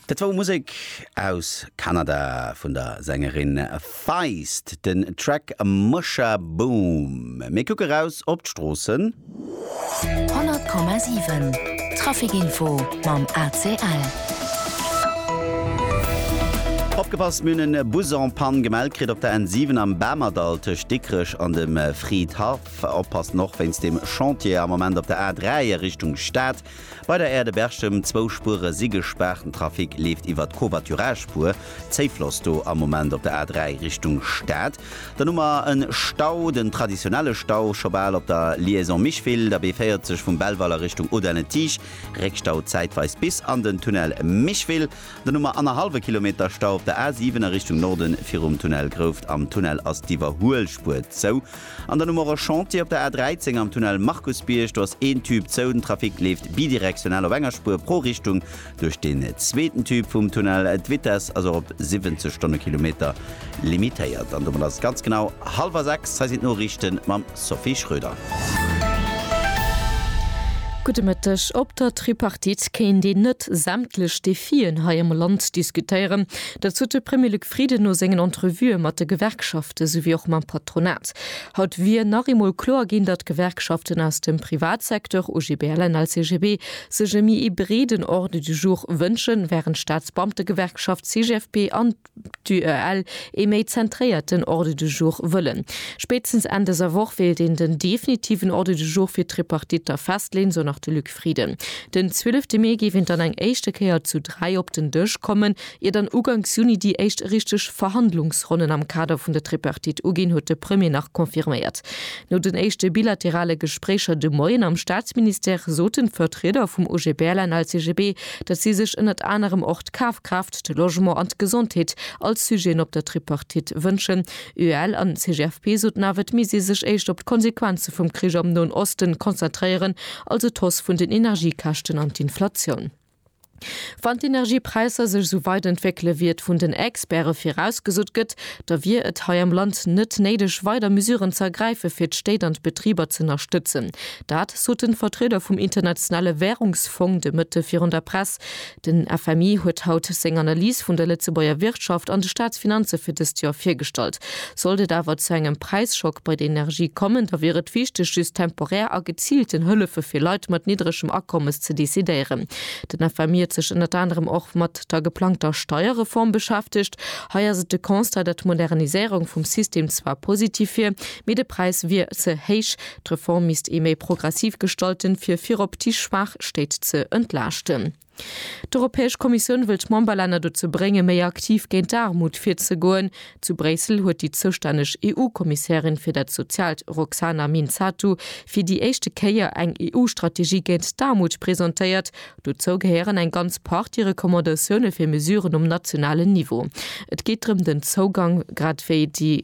Dat war Musek aus Kanada vun der Sängerin Feist, den Track Musha Boom. Mir kucke raus op d'Stroossen. 100,7 Trafic Info mam ACL. Opgepasst, Mir hunn e Bus en Panne gemellt kritt op der N 7 am Bamerdall tëscht Dikrech an dem Fridhaff. Oppassen och wéinst dem Chantier am Moment op der A 3 a Richtung Stad. Bei der Aire de Berchem, zwou Spuere si gespaart, den Trafic leeft iwwer d'Covoiturage-Spuer. Zéifloss do am Moment op der A3 Richtung Stad. Dann hu mer e Stau, den traditionelle Stau scho bal op der Liaison Micheville, der B40 vum Belval a Richtung Audun-le-Tiche. Réckstau zäitweis bis an den Tunnel Micheville. Dann hu mer annerhallwe Kilometer Stau op der A7 a Richtung Norden virum Tunnel Grouft. Am Tunnel ass d'Iwwerhuelspuer zou. An dann hu mer och e Chantier op der A 13 am Tunnel Markusbierg. Do ass een Tube zou. Den Trafic leeft bidirektional op enger Spuer pro Richtung duerch den zweeten Tube vum Tunnel. D'Vitess ass och op 70 Stonnekilometer limitéiert. An domat ass et ganz genau hallwer sechs. Hei sinn d'Noriichten mam Sophie Schroeder. Gudde Mëtteg. Op der Tripartite kéint een net sämtlech Defien hei am Land diskutéieren. Dat sot de Premier Luc. Frieden no sengen Entrevuë mat de Gewerkschafte souwéi och mam Patronat. Haut wier nach eemol kloer ginn, datt d'Gewerkschaften aus dem Privatsecteur, OGBL, LCGB, sech e méi ee breeden Ordre du jour wënschen, wärend d'Staatsbeamtegewerkschaft CGFP an d'UEL ee méi zentréierten Ordre du jour wëllen. Spéitstens Enn dëser Woch wéilt een den definitiven Ordre du jour fir d'Tripartitter festleeën, sou nach de Luc Frieden. Den 12 Mee géif een dann eng éischte Kéier zu dräi op den Dësch kommen, Ier dann uganks Juni déi éischt richteg Verhandlungsronnen am Kader vun der Tripartite uginn, huet de Premier nach confirméiert. No den éischte bilaterale Gespréicher de Moien am Staatsministère soten d'Vertrieder vum OGBL-NL-CGB, datt si sech ënnert anerem och d'Kafkraaft, de Logement an d'Gesondheet als Sujeten op der Tripartite wënschen. UEL an CGFP soten awer, et misst ee sech éischt op d'Konsequenze vum Krich am Noen Osten konzentréieren, also d'Hausse vun den Energiekäschten an d'Inflatioun. Wann d'Energiepräisser sech esou weit entwéckele wéi et vun den Experte virausgesot gëtt, da wier et hei am Land net néideg weider Mesuren ze ergräife fir d'Stéit an d'Betriber z'ënnerstëtzen. Dat sot den Vertrieder vum Internationale Währungsfong de Mëtte virun der Press. Den FMI huet haut seng Analys vun der Lëtzebuerger Wirtschaft an de Staatsfinanze fir dëst Joer virgestallt. Sollt et awer zu engem Präisschock bei de Energie kommen, da wier et wichteg, just temporär a geziilten Hëllefe fir Leit mat niddregem Akommes ze decidéieren. Den FMI huet sech ënnert anerem och mat der geplangter Steierreform beschäftegt. Hei ass et de Constat, datt d'Moderniséierung vum System zwar positiv wier, mee de Präis wier ze héich. D'Reform misst ee méi progressiv gestalten, fir virop déi schwaach Stéit ze entlaaschten. D'Europäesch Kommissioun wëll d'Memberlänner dozou bréngen, méi aktiv géint d'Aarmut virzegoen. Zu Bréissel huet déi zoustänneg EU-Kommissärin fir dat Soziaalt Roxana Minzatu fir déi éischte Kéier eng EU-Strategie géint d'Aarmut presentéiert. Dozou gehéieren eng ganz Partie Recommandatioune fir Mesuren um nationalen Niveau. Et geet drëm den Zougang grad wéi déi.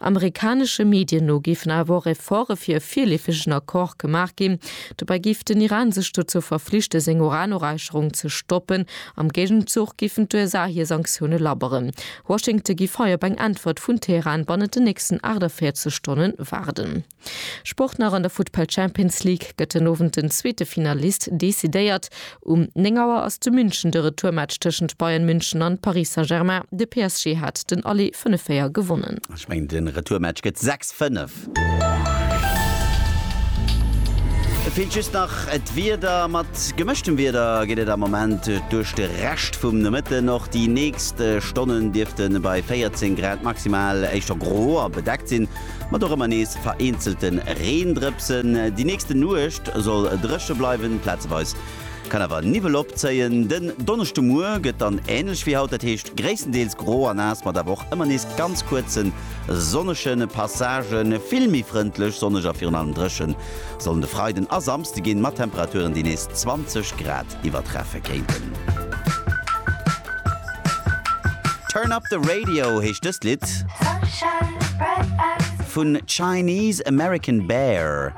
Amerikanesche Medien no géifen awer och Efforte fir e virleefegen Accord gemaach ginn. Dobäi géif den Iran sech dozou verflichte seng Uranoräicherung ze stoppen. Am Géigenzuch géifen d'USA hir Sanktioune labberen. Washington giff hei op eng Äntwert vun Teheran bannent den nächsten 48 Stonne waarden. Sport nach an der Futtball Champions League gëtt den Owend den zweete Finalist decidéiert. Um 9 Auer ass zu München de Retourmatch tëschent Bayern München an Paris Saint-Germain. De PSG hat den Aller 5 Véier gewonnen. Ech mengen den Retourmatch gëtt 6 5. Et feelt just nach d'Wieder. Mat gemëschtem Wieder geet et am Moment duerch de Rescht vum Nomëtten. Och déi nächst Stonnen dierfte bei 14 Grad maximal éischter gro a bedeckt sinn. Mat och ëmmer nees vereenzelte Reendrëpsen. Déi nächste Nuecht soll dréche bleiwen, plazeweis kann awer Niwwel opzéien. Den Donneschdemuer gëtt dann änlech wéi haut, dat heescht gréisstendeels gro a naass, mat awer och ëmmer nees ganz kuerze sonnege Passagen. Vill méi frëndlech, sonneg a virun allem dréche sollen de Freiden a Samsde ginn, mat Temperaturen, déi nees 20 Grad iwwertreffe kéinten. Turn Up The Radio heescht dëst Lidd vun Chinese American Bear.